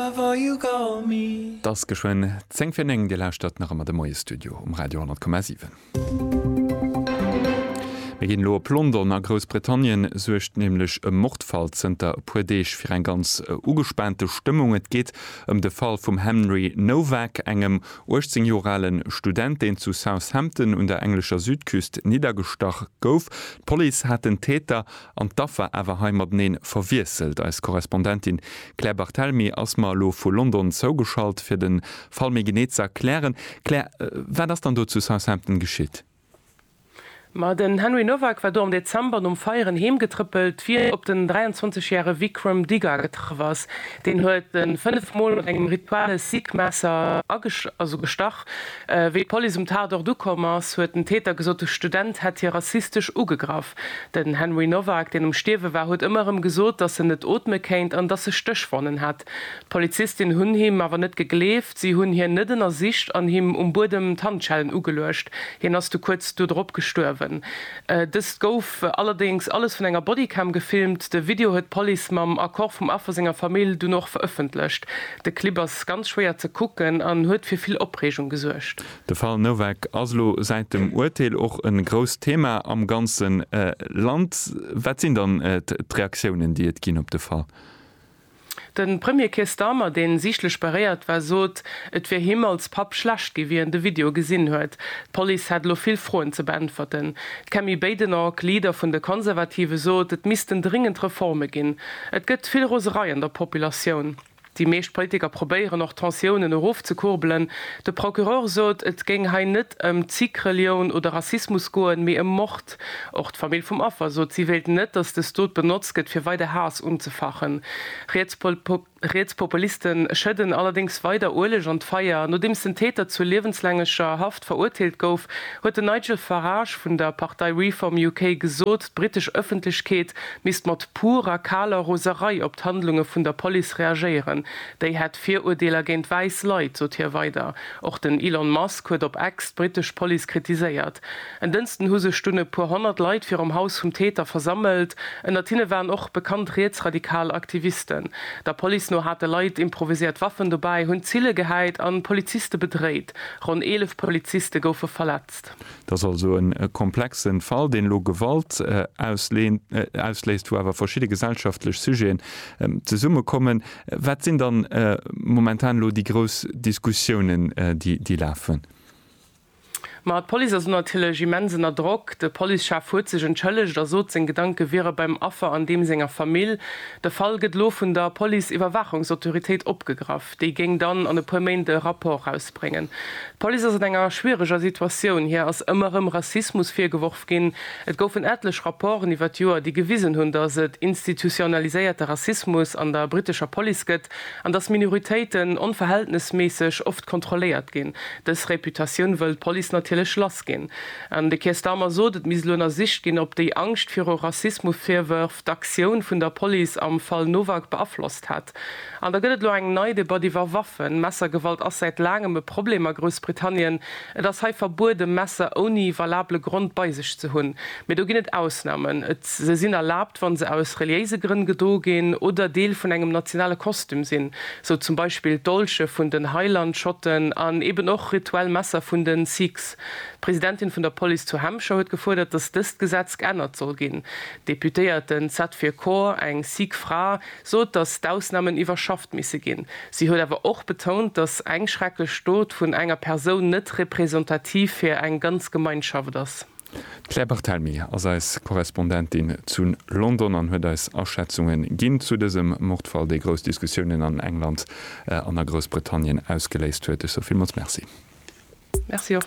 't ass geschwënn 10 fir 9, Dir lauschtert nach ëmmer de Moie-Studio um Radio 10,7. Mir ginn elo op London, a Groussbritannien suergt nämlech e Mordfall zënter e puer Deeg fir eng ganz ugespaante Stëmmung. Et geet ëm de Fall vum Henry Nowak, engem 18 Joer ale Student, deen zu Southampton un der englescher Südküst niddergestach gouf. D'Police hat den Täter an d'Affer awer hei mateneen verwiesselt. Eis Korrespondentin Claire Barthelmy ass mer elo vu London zougeschalt fir den Fall méi genee ze erklären. Claire, wat ass dann do zu Southampton geschitt? Ma den Henry Nowak war do am Dezember nom Feieren heem getrëppelt wéi en op den 23 järe Vikram Diga getraff ass. Deen huet en 5 mol mat engem Rituale Sikh Messer gestach. Wéi d'Police um Tatort ukomm ass, huet den Täter gesot, de Student hätt hie rassistesch ugegraff. Den Henry Nowak, deen um Stierwe war, huet ëmmer erëm gesot, dass en net ootme kéint an dass e Stéchwonnen hätt. D'Polizistin hunn him awer net gegleeft. Si hunn hien net ënnersicht an him um Buedem d'Handschellen ugeluecht. Hien ass du kuerz do drop gestuerwen. Dëst gouf allerdéngs alles vun enger Bodycam gefilmt. De Video huet d'Police mam Accord vum Affer senger Famill dunn och verëffentlecht. De Clip ass ganz schwéier ze kucken an huet fir vill Opreegung gesuergt. De Fall Novak ass elo säit dem Urteel och e grousst Thema am ganze Land. Wat sinn dann d'Reaktiounen, déi et ginn op de Fall? De Premier Keir Starmer, deen siichtlech beréiert war, sot, et wier him als Papp schlecht ginn, wéi en de Video gesinn huet. D'Police hätt elo vill Froen ze beäntwerten. D'Kemi Badenoch, Leader vun de Konservative sot, et missten dringend Reforme ginn. Et gëtt vill Roserei an der Populatioun. Déi meescht Politiker probéieren och d'Tensiounen erofzekurbelen. De Procureur sot, et géing hei net ëm Zikrelioun oder Rassismus goen, mee ëm Mord. Och d'Famill vum Affer sot, si wéilt net, datt dës Dot benotzt gëtt, fir weider Haass unzefachen. Riets Populiste schëdden allerdéngs weider Ueleg an d'Feier. Nodeems den Täter zur liewenslängeger Haft verurteelt gouf, huet den Nigel Farage vun der Partei Reform UK gesot, d'britesch Ëffentlechkeet misst mat purer, kaler Roserei op d'Handlunge vun der Police reagéieren. Déi hätt Virurdeeler géint wäiss Leit, sot hie weider. Och den Elon Musk huet op X d'britesch Police kritiséiert. En Dënsten hu sech dunn e puer honnert Leit virum Haus vum Täter versammelt. Ënnert hinne waren och bekannt rietsradikal Aktivisten. Der Police no hate Leit improviséiert Waffen dobäi, hunn Zille gehäit a Poliziste bedréit. Ronn 11 Poliziste goufe verletzt. Et ass also e komplexe Fall, deen elo Gewalt ausléist, wou awer verschidde gesellschaftlech Sujeten zesummekommen. Wat sinn dann momentan elo déi grouss Diskussiounen, déi lafen? Ma d'Police ass natierlech immens ënner Drock. De Policechef huet sech entschëllegt a sot, seng Gedanke wiere beim Affer an deem senger Famill. De Fall gëtt elo vun der Police-Iwwerwaachungsautoritéit opgegraff. Déi géing dann an e puer Méint e Rapport erausbréngen. D'Police ass an enger schwiereger Situatioun. Hir ass ëmmer erëm Rassismus virgeworf ginn. Et goufen etlech Rapporten iwwer d'Joer, déi gewisen hunn, datt et institutionaliséierte Rassismus an der brittescher Police gëtt. An dass Minoritéiten onverhältnesméisseg oft kontrolléiert ginn. Dës Reputatioun wëll d'Police natierlech lass ginn. An de Keir Starmer sot, et misst elo ënnersicht ginn, ob déi Angscht viru Rassismusvirwërf d'Aktioun vun der Police am Fall Nowak beaflosst hätt. An da gëtt et elo eng nei Debatt iwwer Waffen. Messergewalt ass säit laangem e Problem a Groussbritannien. Et ass hei verbueden, Messer ouni valabele Grond bei sech ze hunn. Mee do ginn et Ausnamen. Et se sinn erlaabt, wann se aus reliéise Grënn gedo ginn oder Deel vun engem nationale Kostüm sinn, sou zum Beispill d'Dolche vun den Highland-Schotten an eben och rituell Messer vun den Sikhs. D'Presidentin vun der Police zu Hampshire huet gefuerdert, datt dëst Gesetz geännert soll ginn. D'Deputéierten Satveer Kaur, eng Sikh Fra, sot, datt d'Ausnamen iwwerschafft misse ginn. Si huet awer och betount, datt eng schrecklech Dot vun enger Persoun net representativ fir eng ganz Gemeinschaft ass. D'Claire Barthelmy ass eis Korrespondentin zu London an huet eis Aschätzunge ginn zu dësem Mordfall, dee grouss Diskussiounen an England an a Groussbritannien ausgeléist huet. Ech soe villmools Merci. Merci och.